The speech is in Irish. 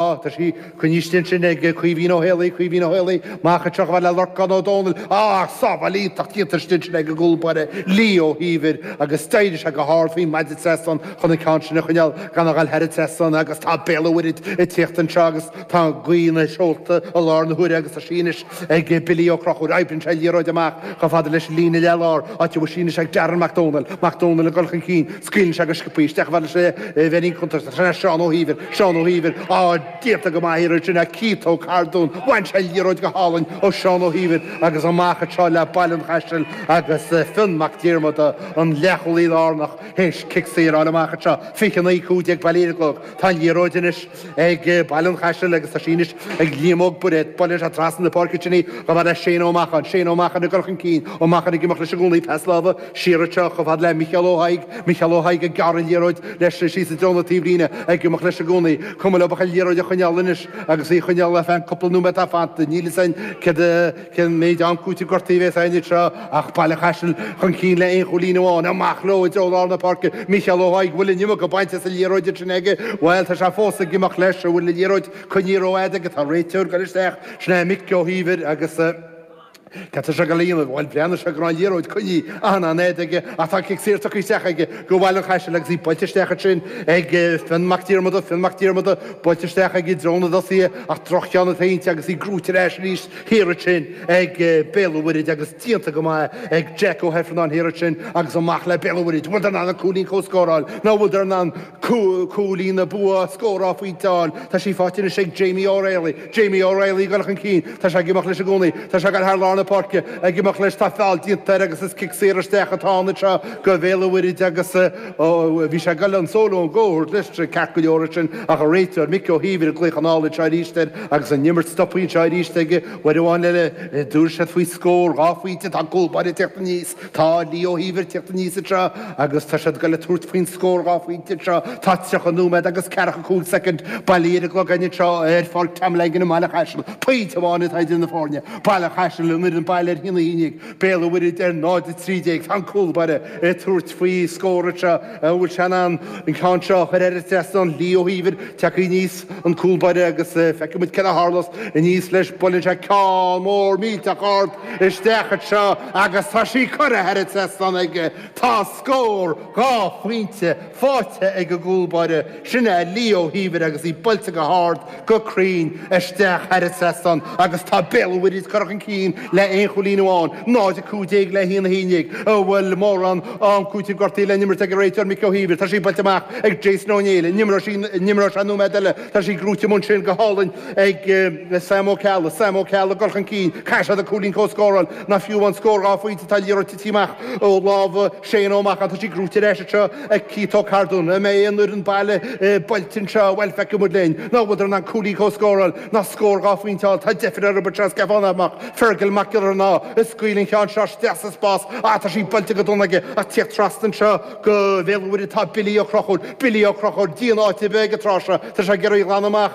Á, tá sí, coinnithe ansin ag Caoimhín Ó hÉalaí, Caoimhín Ó hÉalaí, amach anseo chomh fada le Lorcán Ó Dónaill, á, sábháil iontach déanta istigh ansin ag an gcúl báire, Lee Ó hÍomhair, agus d'éirigh sé go hard faoin maide trasnán chun an ceann sin a choinneáil gan a ghabháil thar an trasnán agus tá Béal an Mhuirthid ag tíocht anseo agus tá gaoth ina seolta i láthair na huaire agus tá sí anois Ag Billy Ó Crochúir, oibríonn sé an liathróid amach chomh fada leis an líne leathlár, áit a bhfuil sí anois ag Darren Mac Dónaill. Mac Dónaill ag dul chun cinn, scaoileann sé go sciobtha í isteach chomh fada leis an bheirín cuntais, sin é Seán Ó hÍomhair. Seán Ó hÍomhair, Á, déanta go maith thiar ansin ag Keith Ó Cardúin, bhain sé an liathróid go hálainn ó Sheán Ó hÍomhair agus amach anseo le Baile an Chaistil agus Fionn Mac Diarmada, an leathchúlaí lárnach, théis cic saor a fháil amach anseo. 29, 15 bailithe ar an gclog. Tá an liathróid anois. ag Baile an Chaistil agus tá sí anois ag Liam Óg Bairéad, buaileann sé trasna na páirce ansin í chomh fada le Séan Ó Macháin, Séan Ó Macháin ag dul chun cinn, Ó Macháin ag imeacht leis i gcónaí pas láimhe siar anseo chomh fada le Micheál Ó hAdhaigh, Micheál Ó hAdhaigh ag gearradh an liathróid leis síos i dtreo na taobhlíne ag imeacht leis i gcónaí, cuma leob ach an liathróid a choinneáil anois agus í a choinneáil ar feadh an cúpla nóiméad atá fanta, níl fhios a'inn céard a Cén méid am cúitimh gortaithe a bhéas ann anseo ach Baile Chaisil chun cinn le aon chúilín amháin. Amach leo i dtreo lár na páirce, Micheál Ó h-Aghaidh, bhfuil an iomarca bainte as an liathróid ansin aige? Bhuel, tá sé fós ag imeacht leis, an bhfuil an liathróid coinnithe rófhada aige? Tá an réiteoir ag goil isteach, sin é Mick Ó hÍomhair agus cad tá sé ag goil a dhéanamh? Bhuel, breathnaigh sé go raibh an liathróid coinnithe achar an-fhada aige ach tá cic saor tugtha isteach aige go Bhaile an Chaisil agus í buailte isteach ansin ag Fionn Mac Diarmada, Fionn Mac Diarmada, buailte isteach aige i dtreo na dtosaithe ach drochcheann atá inti agus í gnóite ar ais arís. Thiar ansin ag Béal an Mhuirthid agus díonta go maith ag Jack Ó hEifearnáin thiar ansin agus amach le Béal an Mhuirthid. Bhfuileadar in ann an cúilín comhscóir a fháil? Nó bhfuileadar in ann cúilín na bua a scóráil fiú amháin? Tá sí faighte anois ag Jamie O'Reilly. Jamie O'Reilly ag dul chun cinn. Tá sé ag imeacht leis i gcónaí. Tá sé ag dul thar lár na páirce. Ag imeacht leis. Tá feall déanta air agus is cic saor isteach atá ann anseo go Bhéal an Mhuirthid agus, Ó, bhí sé ag dul an solo and go a thabhairt leis ceart go leor ansin ach an réiteoir, Mick Ó hÍomhair, ag glaoch anall anseo aríst air agus an imirt stoptha anseo aríst aige, uair amháin eile, dtabharfaidh siad faoi scór, dhá phointe, tá an cúl báire ag teacht aníos, tá Lee Ó hÍomhair ag teacht aníos anseo agus tá siad ag dul ag tabhairt faoin scór dhá phointe anseo, tá tríocha nóiméad agus ceathracha a cúig soicind bailithe ar an gclog againn anseo ar Pháirc Tom Langan i mBaile Chaisil, pointe amháin atá idir na foirne, Baile Chaisil an fhoireann baile ar a haon a haon déag, Béal an Mhuirthid ar 0:13 tá an cúl báire ag tabhairt faoi scór anseo an bhfuil sé in ann an ceann seo a chur thar an trasnán, Lee Ó hÍomhair tagtha aníos an cúl báire agus feicfidh muid céard a tharlós aníos leis, buaileann sé ceann mór millteach ard isteach anseo agus tá sí curtha thar an trasnán aige. Tá scór, dhá phointe, faighte ag an gcúl báire, sin é Lee Ó hÍomhair agus í buailte go hard, go cruinn isteach thar an trasnán agus tá Béal Mhuirthead ag cur chun cinn le aon chúilín amháin, 0, 15 le haon, 11, an bhfuil mórán am cúitimh gortaithe le n-imirt ag an réiteoir Mickey O'Heever, tá sí bainte amach ag Jason Ó Néill, an n-imreoidh sé nóiméad eile, tá sí gnóite amuigh ansin go hálainn ag Sam Ó Ceallaigh, Sam Ó Ceallaigh ag cur chun cinn, caithfidh siad an cúilín comhscóráil ná fiú amháin scór dhá phointe, tá an liathróid titithe amach ó lámha Séan Ó Macháin, tá sí gnóite ar ais anseo ag Cito Cardone, an mbeidh an fhoireann baile buailte anseo, bhuel, feicfidh muid linn. Ná bhfuileadar in ann cúilín comhscóráil ná scór dhá phointe a fháil, tá deifir orthu, but seo Stefan amach, Fergal Mac Giollarnáth a scaoil an ceann seo isteach sa spás, á tá sí buailte go dona aige ach tíocht trasna anseo go Béal Mhuirthead, tá Billy Ó Conchúir, Billy Ó Conchúir, díon áite a bheith ag an tráth seo, tá sé ag iarraidh a ghlanadh amach,